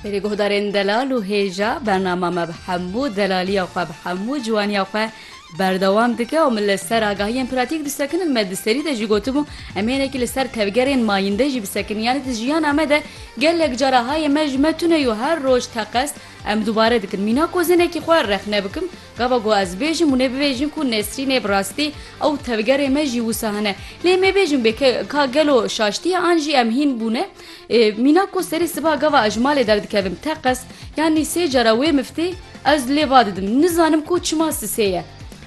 Berê guhdarên delal û hêja, bernama me bi hemû delaliya xwe, bi hemû ciwaniya xwe berdewam dike û min li ser agahiyên pratîk disekinin. Me di serî de jî gotibû em hênekî li ser tevgerên mayînde jî bisekin. Yanî di jiyana me de gelek cara hayê me ji me tune yo her roj teqez em dubare dikin. Mîna ku ez hinekî xwe rexne bikim gava ku ez bêjim hûn ê bibêjin ku Nesrîn ê bi rastî ew tevgerê me jî wisa hene. Lê em ê bêjin bê ka gelo şaştiye an jî em hîn bûne? Ê mîna ku serê siba gava ez ji malê derdikevim teqez yanî sê cara wê miftê ez lê va didim. Nizanim ku çima sisê ye.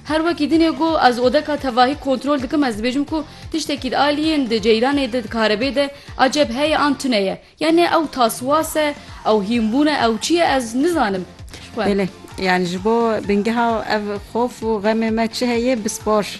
Her wekî dinê ku ez odeka tevahî kontrol dikim ez dibêjim ku tiştekî di aliyên di ceyranê de di karebê de aceb heye an tune ye. Yanî ew taswas e, ew hînbûn e, ew çi ye ez nizanim. Belê, yanî ji bo bingeha ev xof û xemê me çi heye bispor.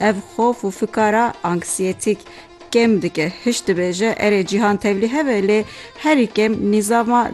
Ev xof û fikara anksiyetîk kêm dike. Hişt dibêje erê cîhan tevlî hebe lê herî kêm nîzama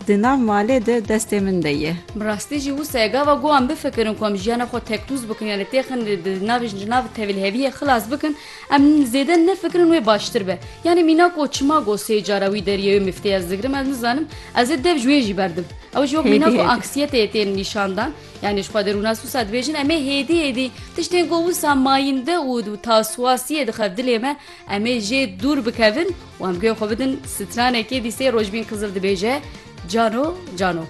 di nav malê de destê min de ye. Bi rastî jî wisa ye gava ku em bifikirin ku em jiyana xwe tektûz bikin yanî têxin di navê ji nav tevliheviyê xilas bikin em zêde nefikirin wê baştir be. Yanî mîna ku çima got sê cara wî deriyê wê miftê ez digirim ez nizanim ez ê dev ji wê jî berdim. Ew jî wek mîna ku anksiyeteyê tên nîşandan. Yanî ji xwe di rûna sûsa dibêjin em ê hêdî hêdî tiştên ku wisa mayînde û û taswasiyê dixev dilê me em ê jê dûr bikevin û em guya xwe bidin stranekê dîsê rojbîn Qizil dibêje cano cano.